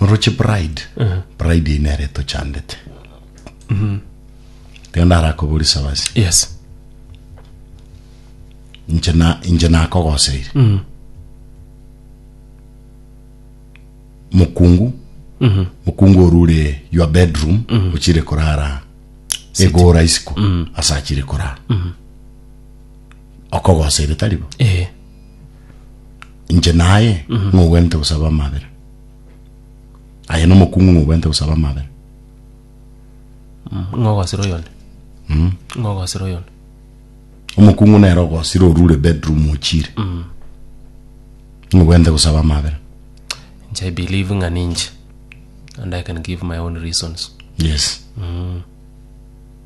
noroche pride pride eye nere etochandete tiga ndarakobori sabasi yes inche na inche nakogoseire mokungu mokungu orure your bedroom ochire korara egora isiko ase achire korara okogoseire taribo eh inche naye ng'ogwenerete gosaba amabera aye nomokung'u ng'ogwenerete gosaba amabera ng'ogosera oyonde ng'ogosera oyonde omokung'u nere ogosire orure bedroom ochire ng'ogwenerete gosaba amabera inche i believe ng'a ninche and i can give my own reasons yes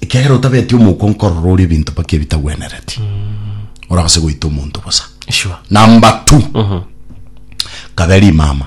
ekiagera otabeti omouko nkorora ore ebinto mpaka ebitagwenereti oragase goita omonto bosa Sure. number two kabe rimama